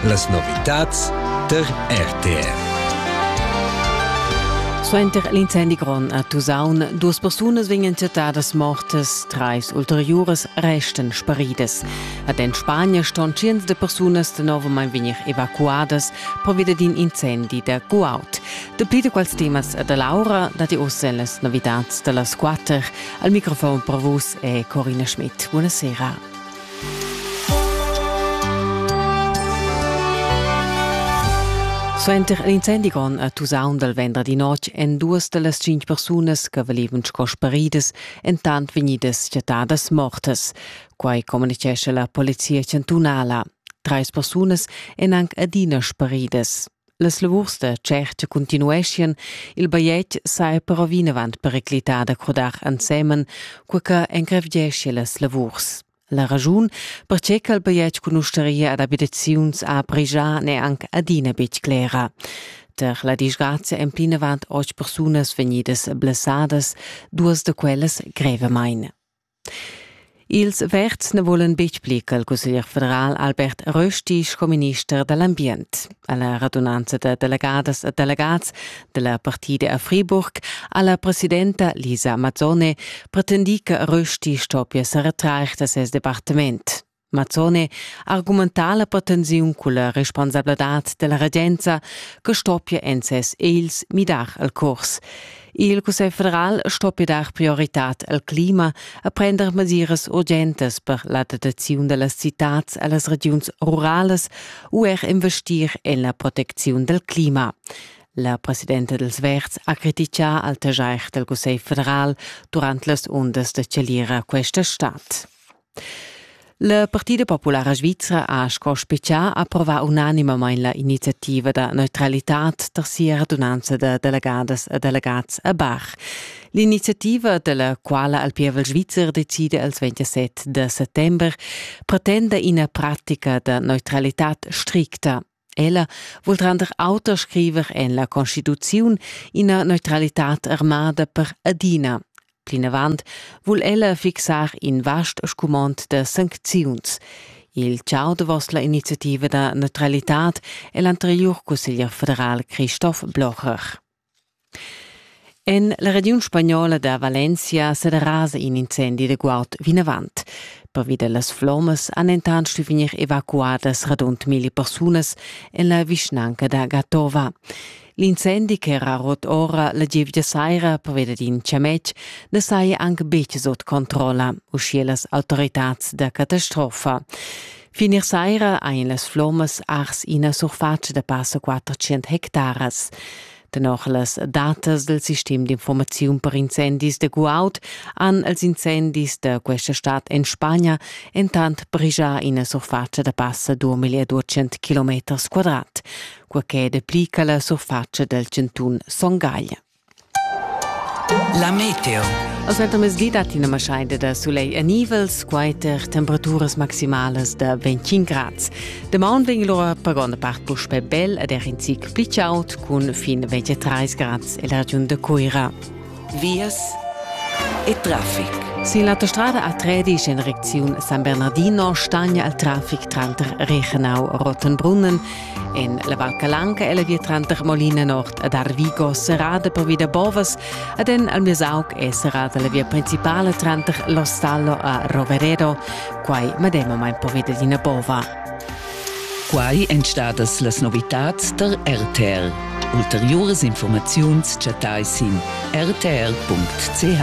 Las novitads tar RTR. Suenter l'incendi grond a Tusaun, duas persunas vegnan chattadas mortas, trais ulteriuras resten sparidas. Ad en Spagna ston tschients de persunas tenovamain vegnir evacuadas pervia d'in incendi da Guaut. Dapli da quals temas da Laura dati ossa las novitads da las quatter. Al microfon per vus è Corina Schmidt. Buonasera. Suenter in incendi grond a Tusaun dal venderdi notg èn duas da las cinq persunas che valevan sco sparidas entant vegnidas chattadas mortas. Quai communitgescha la polizia chantunala. Trais persunas èn anc adina sparidas. Las lavurs da tscherta continueschien, il bajetg sa però vinavant periclitar da crodar ensemen, cur che encrevgesce las lavurs. La ragiun, perche ch'el bajetg cunusteria ad abitaziuns a pregiar n'è anche adina betg clera. Per la disgrazia èn plinavant otg persunas vegnidas blessadas, duas da quellas grevamain. Ils Verds na vulan betg pli ch'il cusseglier federal Albert Rösti sco minister da l'ambient. A la radunanza da delegadas e delegats da la partida a Friburg ha la presidenta Lisa Mazzone pretendì che Rösti stoppia sa retrair da ses departament. Mazzone argumenta la pretensiun culla responsabladad della regenza che stoppia en ses els midar il curs. Il Cussegl federal stoppia dar prioritad al clima e prender mesiras urgentes per la dataziun dellas citats allas regiuns rurales u er investir en la proteziun del clima. La presidenta dels Verds ha critichà al tegiair del Cussegl federal durant las undas de celira questa stad. La Partida populara svizra ha sco specià approvà unanimamain la iniziativa da neutralitad tar sia radunanza da delegadas e delegats a Bach. L'iniziativa, dalla quala al pievel svizzer decide els 27 de settember, pretenda ina pratica da neutralitad stricta Ella vul render auter scriver en la Constituziun ina neutralitad armada per adina. Plinavant vul ella fixar in vast scumond da sancziuns. Il ciao davos la iniziativa da neutralitad è l'anterior cusseglier federal Christoph Blocher. En la regiun spagnola da Valencia serasa in incendi da guaud vinavant. Pervi da las flommas han entant stuì vegnir evacuadas radund mille persunas en la vischnanca da Gatova. L'incendi ch'era rot ora la gievgia saira perveda d'in chametg na saja anc betg sut controlla, uschia las autoritads da catastrofa. Finir saira ein las flommas ars ina surfatscha da passa 400 hectaras. Tenor las datas del sistem d'informaziun per incendis de Guaud han els incendis de questa stad en Spagna entant brigia ina surfatscha da passa 2200 km quadrat, quaquei de pli che la surfatscha del cantun Son Gagl. La meteo. Als mezzdi dat ina maschaida da sulegl e nivels, quater temperaturas maximalas da 25 grads. Damaun vegn lura per gronda part puspè bel ed er in zic pli chaud cun fin 23 grads e la regiun de Cuira. Vias e traffic. Sin l'autostrada A13 in recziun San Bernardino stagna il traffic tranter Reichenau e Rottenbrunnen En la Val Calanca è la via tranter Molina Nord ed Arvigo serrada pervi da bovas ed en Almesauc è serrada la via principala tranter l'Ostallo a Roveredo, quai medemamain pervi da ina bova. Quai èn stadas las novitads tar RTR. Ulteriuras informaziuns chattai sin rtr.ch.